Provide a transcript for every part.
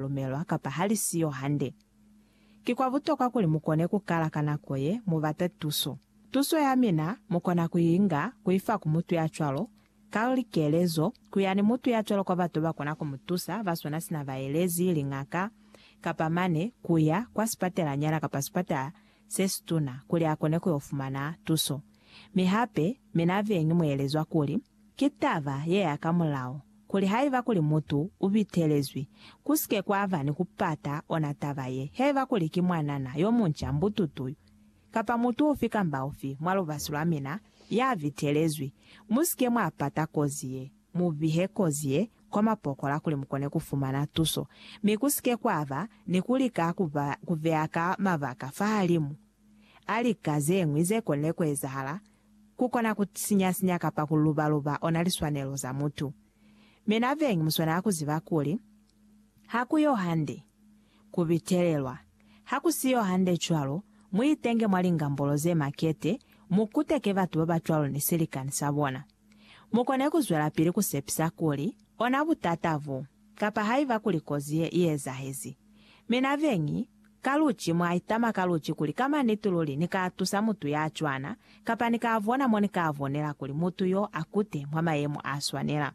lumelwa kapa ha li siyo hande. Ki kwa butokwa kuli mu kone ku kala ka nako ye mu bata tuso. Tuso ya mina mu kona ku i nga ku i fa ku mutu ya cwalo, ka likelezo, ku ya ni mutu ya cwalo kwa batu ba kona ku mu tusa ba swana sina baelezi, liñaka, kapa mane ku ya kwa sipatelanyana kapa sipatala se situna kuli a kone ku yo fumana tuso. Mi hape, mina beñi mu elezwa kuli, Ki taba yeya ka mulao, kuli haiba kuli mutu u bitelezwi, ku si ke kwa ba ni ku pata ona taba ye, haiba kuli ki mwanana yo munca mbututu yu, kapa mutu ufi kamba ufi mwa lubasi lwa mina ya bitelezwi, mu si ke mwa pata kozi ye. Mu bihe kozi ye kwa mapokola kuli mu kone ku fumana tuso, mi ku si ke kwa ba ni ku lika ku ba ku beya ka mabaka fahalimu a lika ze ñwi ze konile ku ezahala Ku kona ku sinya-sinya kapa ku luba-luba ona liswanelo za mutu. Mi na bengi mu swanela ku ziba kuli, ha ku yo hande ku bitelelwa. Ha ku si yo hande cwalo, mu itenge mwa lingambolo ze makete, mu kuteke batu ba ba cwalo ni silikani sa bona. Mu kone ku zwelapili ku sepisa kuli, ona butata bo Kapa haiba kuli kozi ye i ezahezi. Mi na beñi, ka luci, mwa itama ka luci kuli, Ka maniti luli ni ka tusa mutu ya cwana, kapa ni ka bona mo ni ka bonela kuli mutu yo a kute mwa mayemo a swanela.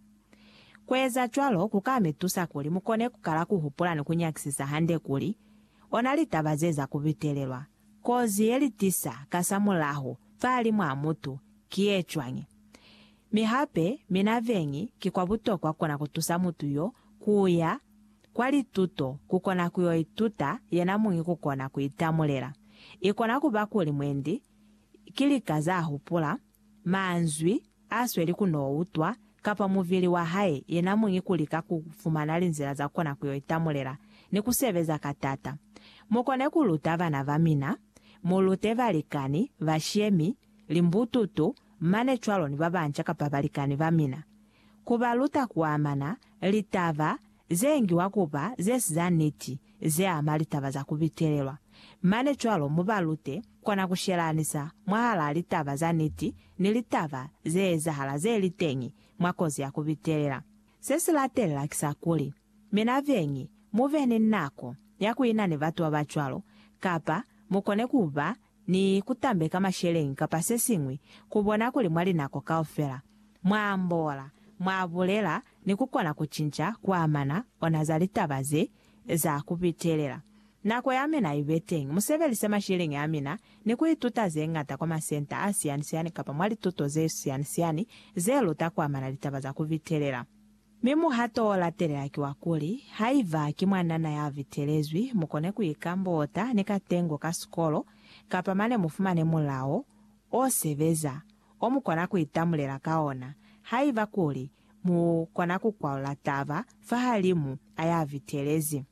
Ku eza cwalo ku ka mi tusa kuli mu kone ku kala ku hupula ni ku nyakisisa hande kuli, Ona litaba ze za ku bitelelwa kozi ye li tisa kasamulaho fa limo a mutu ki ye cwañi? Mi hape, mina veñi, ki kwa butokwa kona kutusa mutu yo kuya kwa lituto, kukona kuyo ituta yena muñi kukona kuitamulela. Ikona kuba kuli mwendi ki lika za hupula, manzwi asweli kuno utwa, kapa muvili wa hae yena muñi kulika ku fumana linzila za kona kuyo itamulela ni kusebeza ka tata. Mukone kuluta bana ba mina, mulute balikani, bashemi, limbututu, mane cwalo ni babanca kapa balikani bamina, kubaluta kuamana litaba zeengiwa kuba zesi za niti zeama litaba za kubitelelwa, mane cwalo mubalute kona kushelanisa mwahalaa litaba za niti ni litaba zeezahala zeliteñi mwa kozi ya kubitelela. Sesilatelela kisa kuli, mina beñi mube ni nako ya kuina ni batu babacwalo kapa mukone kuba ni ku tambeka masheleñi kapa se siñwi ku bona kuli mwa linako kaufela mwa ambola, mwa bulela ni ku kona ku cinca ku amana ona za litaba ze za ku pitelela. Nako ya mina i be teñi. Mu sebelise masheleñi a mina ni ku ituta ze ñata kwa masenta a siani-siani kapa mwa lituto ze siani-siani ze luta ku amana litaba za ku pitelela. Mi muhato o latelela ki wa kuli, haiba ki mwanana ya bitelezwi, mu kone ku ikambota ni katengo ka sikolo, kapa mane mu fumane mulao o sebeza, o mu kona ku itamulela ka ona, haiba kuli mu kona ku kwalula taba fahalimu a ya bitelezi.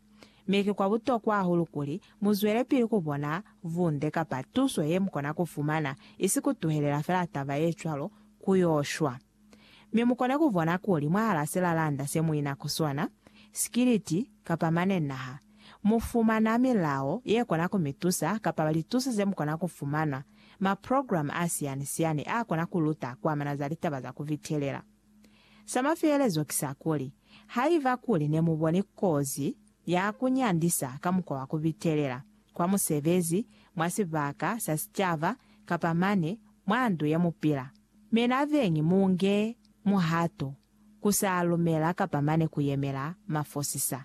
Mi ki kwa butokwa hahulu kuli mu zwelepili ku bona bunde kapa tuso ye mu kona ku fumana, isi ku tuhelela fela taba ye cwalo ku yo shwa. Mi mukona kubona kuli mwahala silalanda semuina kusona, sikiliti, kapa mane naha, mufumana milao yekona kumitusa kapa lituso zemukona kufumana, maprogramu asiyani-siyani akona kuluta kuamana za litaba za kuvitelela. Samafelelezo kisakuli, haiba kuli nemuboni kozi ya kunyandisa ka mukwa wa kuvitelela, kwa musebezi, mwa sibaka sa sicaba, kapa mane mwa ndu yemupila, Mi naveñi mu nge muhato ku sa lumela kapa mane ku yemela mafosisa.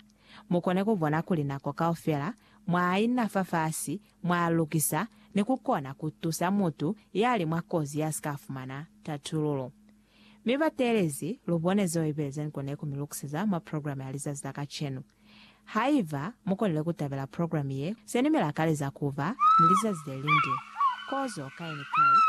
Mu kone ku bona kuli nako kaufela mwa ina fafasi, mwa lukisa, ni ku kona ku tusa mutu ya li mwa kozi ya si ka fumana tatululo. Mi bateelezi, lu bone zeo Ibelezen kone ku mi lukiseza mwa programe ya lizazi la kacenu. Haiba mu konile ku tabela programe ye, se ni mi lakaleza ku ba ni lizazi le linde. Kozo kai ni kai.